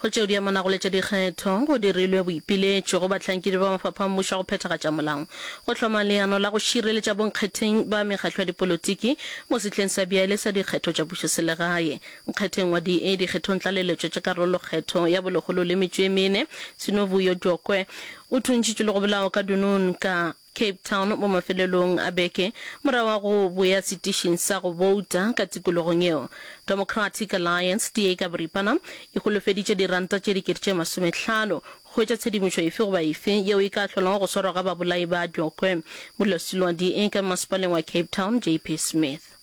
Go tšeo di amanago le tša dikgetho, go dirilwe boipiletšo go bahlankedi ba mafapha a mmušo a go phethagatša molao, go hloma leano la go šireletša bonkgetheng ba mekgatlo ya dipolotiki mo sehleng sa bjale sa dikgetho tša pušoselegae, nkgetheng wa DA, dikgethong tlaleletšo tša karolokgetho ya bolegolo le metšo e mene. Sinovuyo Djokwe o thuntšitšwe le go bolawa ka Dunun ka. Cape Town, mo mafelelong a beke, morago ga go boya setišing sa go bouta ka tikologong yeo. Democratic Alliance, DA ka boripana, e holofeditše diranta tše dikete tše masomehlano go hwetša tshedimošo efe goba efe yeo e ka hlolago go swarwa ga babolai ba Djokwe, Molwasiloa DA ka mmasepaleng wa Cape Town, JP Smith.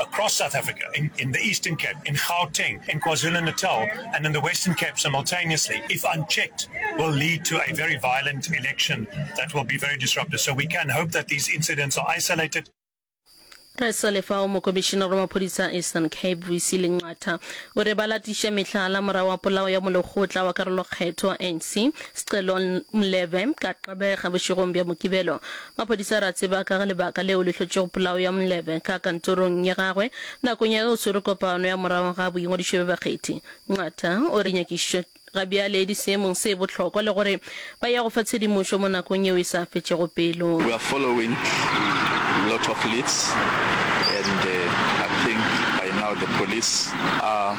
across South Africa, in, in the Eastern Cape, in Gauteng, in KwaZulu-Natal, and in the Western Cape simultaneously, if unchecked, will lead to a very violent election that will be very disruptive. So we can hope that these incidents are isolated. re sa lefao mokomišenare wa maphodisa a eastern cape vc lenqatha o re ba latiša mehlala morago wa polao ya molekgotla wa karolokgetho wa anc scelo mlebe ka xebega bošegong bja mokibelo Maphodisa re a tseba ka ga lebaka leo le hlotšego polao ya Mlebe ka kantorong ya gagwe nakong ya ge o swere kopano ya morago ga boingwadišo bja bakgethi. Nqatha o re nyakišišo ga bjale e di seemong se bohlokwa le gore ba ya go fa tshedimošo mo nakong yeo e sa fetšego pelo. We are following lot of leads and I think by now the police are.